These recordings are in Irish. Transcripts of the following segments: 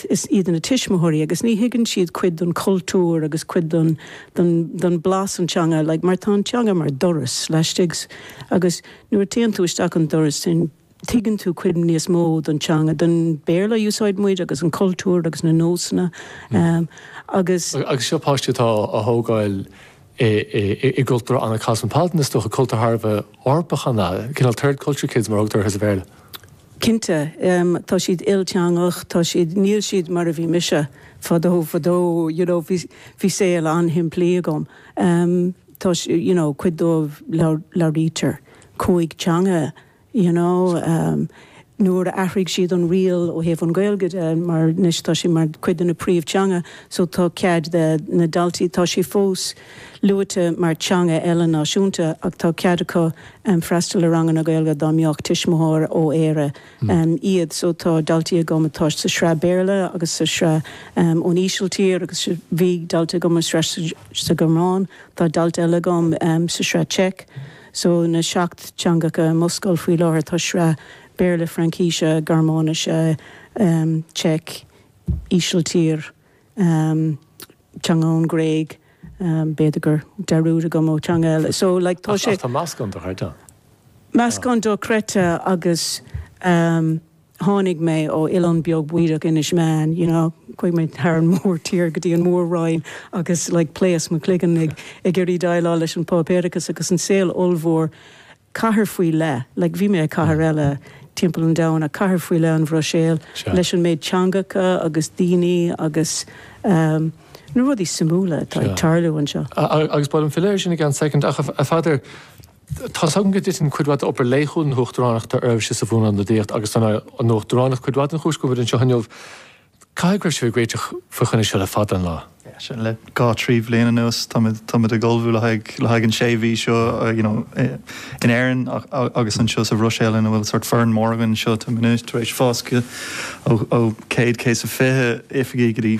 is iad na tuismitheoirí agus ní thuigeann siad cuid den chultúr agus cuid den den den blas an teanga like mar tá an teanga mar doras isteach agus nuair a téann tú isteach an doras sin tuigeann tú cuid níos mó don teanga don Béarla a úsáid muid agus an cultúr agus na nósanna agus. Agus seo páistí atá á thógáil i gcultúr an-cosmopolitan, is dócha, cultúr thar a bheith Eorpach an ea? Cineál third culture kids mar a thugtar orthu sa Bhéarla. Cinnte. Tá siad ilteangach, tá siad, níl siad mar a bhí mise fadó fadó, you know, bhí, bhí saol an-shimplí agam. Tá, you know, cuid dóibh labhraítear cúig teanga. you know, nuair a athraigh siad an riail ó thaobh an Gaeilge de mar anois tá sí mar cuid de na príomh teanga so tá cead ag na daltaí, tá sí fós luaite mar teanga eile náisiúnta ach tá cead acu freastal ar ranganna Gaeilge dá mbeadh tuismitheoir ó Éire iad so tá daltaí agam atá sa sraith Béarla agus sa sraith ón Ísiltír agus bhí dalta agam sa sraith sa Ghearmáin, tá dalta eile agam sa sraith Czech. So tá seacht teangacha i mo scoil faoi láthair, tá sraith Béarla, Fraincíse, Gearmáinise, Czech, Ísiltír, teanga ón nGréig, b'fhéidir go bhfuil dearúd agam ar theanga eile. So like tá sé. Ach tá meascán dochreidte. Meascán dochreidte agus. tháinig mé ó oileán beag bídeach Inis Meáin you know chuaigh mé thar an mórthír go dtí an mór-roinn agus like pléas mo chloigeann ag ag iarraidh déileáil leis an páipéarachas agus an saol ollmhór cathair faoi leith like bhí mé i gcathair eile timpeall an domhain ach cathair faoi leith an Bhruiséil leis an méid teangacha agus daoine agus ehm na rudaí suimiúla atá ag tarlú anseo. Agus bhfuil aiféala ort in aon chor second ach a Pheadair, Tá's agam go dtiteann cuid mhaith d'obair laethúil na huachtaránachta oraibhse sa Bhuanionadaíocht agus is an uachtaránacht cuid mhaith den chúis go bhfuilimid anseo inniu. Caithfidh go raibh sibh ag réiteach faoi choinne seo le fada an lá. Sea, le dhá, trí bhliain anuas táimid ag ullmhú le haghaidh an sé mhí seo in Éirinn agus anseo sa Bhruiséil ina bhfuil sort foireann mór againn anseo. Táimid anois tar éis fás ó céad céad is a fiche oifigeach go dtí.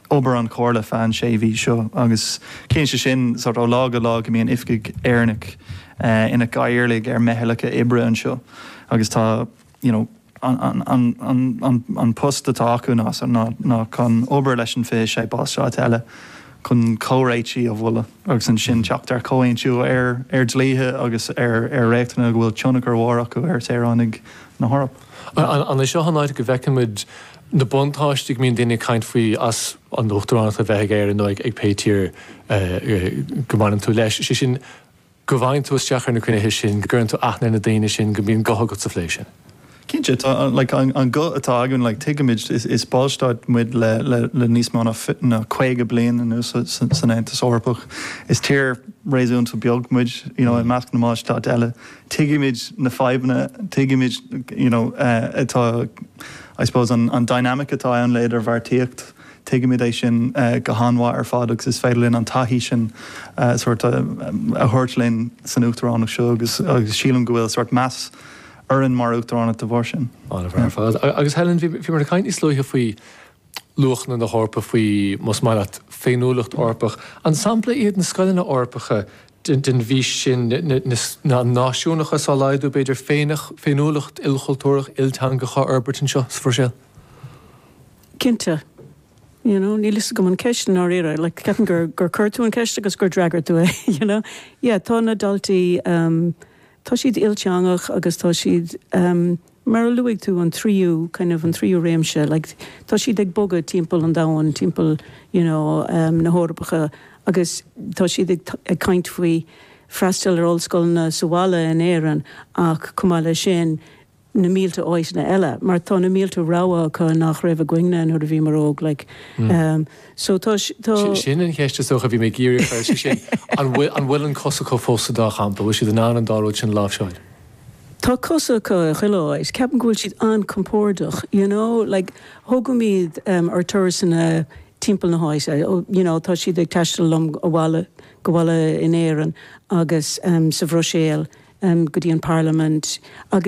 obair an chomhairle feadh an sé mhí seo agus téann sé sin sort ó lá go lá go mbíonn oifigigh Éireannacha ina gcathaoirligh ar mheithleacha oibre anseo agus tá you know an post atá acu ná ná chun obair leis an fiche sé ballstát eile chun comhréitigh a mholadh agus ansin teacht ar chomhaontú ar ar dlíthe agus ar ar reachtanna go bhfuil tionchar mhór acu ar shaoránaigh na hEorpa. An é seo an áit go bhfeicfimid na buntáistí a mbíonn daoine ag caint faoi as an uachtaránacht a bheith ag Éirinn nó ag pé tír go mbaineann tú leis, sé sin go bhfaigheann tú isteach ar na cruinnithe sin, go gcuireann tú aithne ar na daoine sin, go mbíonn guth agat sa phlé sin. Cinnte, tá an guth atá againn, tuigimid, is ballstát muid le níos mó ná caoga bliain anuas san Aontas Eorpach, is tír réasúnta beag muid i measc na mballstát eile. tuigimid na fadhbanna, tuigimid you know atá I suppose an an dynamic atá ann le idirbheartaíocht, tuigimid é sin go han-mhaith ar fad agus is féidir linn an taithí sin sort of a thabhairt linn san Uachtaránacht seo agus agus sílim go bhfuil sort meas orainn mar Uachtaránacht de bharr sin. Maith ar fad. Agus Helen, bhí mé ag caint níos luaithe faoi, luachanna na hEorpa faoi, más maith leat, féiniúlacht Eorpach. An sampla iad na scoileanna Eorpacha den bhfís sin, náisiúnachas á laghdú, b'fhéidir, féiniúlacht ilchultúrach, ilteangach á fhorbairt anseo sa Bhruiséil? Cinnte. You know, níl fhios agam an ceist i ndáiríre, like, ceapaim gur, gur cuir tú an ceist agus gur d'fhreagair tú é, you know. Yeah, tá na daltaí, tá siad ilteangach agus tá siad, Mar a luaigh tú, an tríú, kind of, an tríú réimse, like, tá siad ag bogadh timpeall an domhain, timpeall, you know, na hEorpacha agus tá siad ag ag caint faoi freastal ar ollscoileanna sa bhaile in Éirinn ach, chomh maith leis sin, na mílte áiteanna eile mar tá na mílte rogha acu nach raibh againne nuair a bhíomar óg, like. So tá, tá. Sin an cheist is dócha a bhí mé ag iarraidh a chur, sé sin, an bhfuil, an bhfuil an chos acu fós sa dá champa, bhfuil siad in ann an dá rud sin a láimhseáil? Tá cosa acu i chuile áit. Ceapaim go bhfuil siad an-compordach, you know, like, tógaimid ar turasanna timpeall na háite, you know, tá siad ag taisteal liom abhaile, abhaile in Éirinn agus sa Bhruiséil go dtí an Parlaimint agus,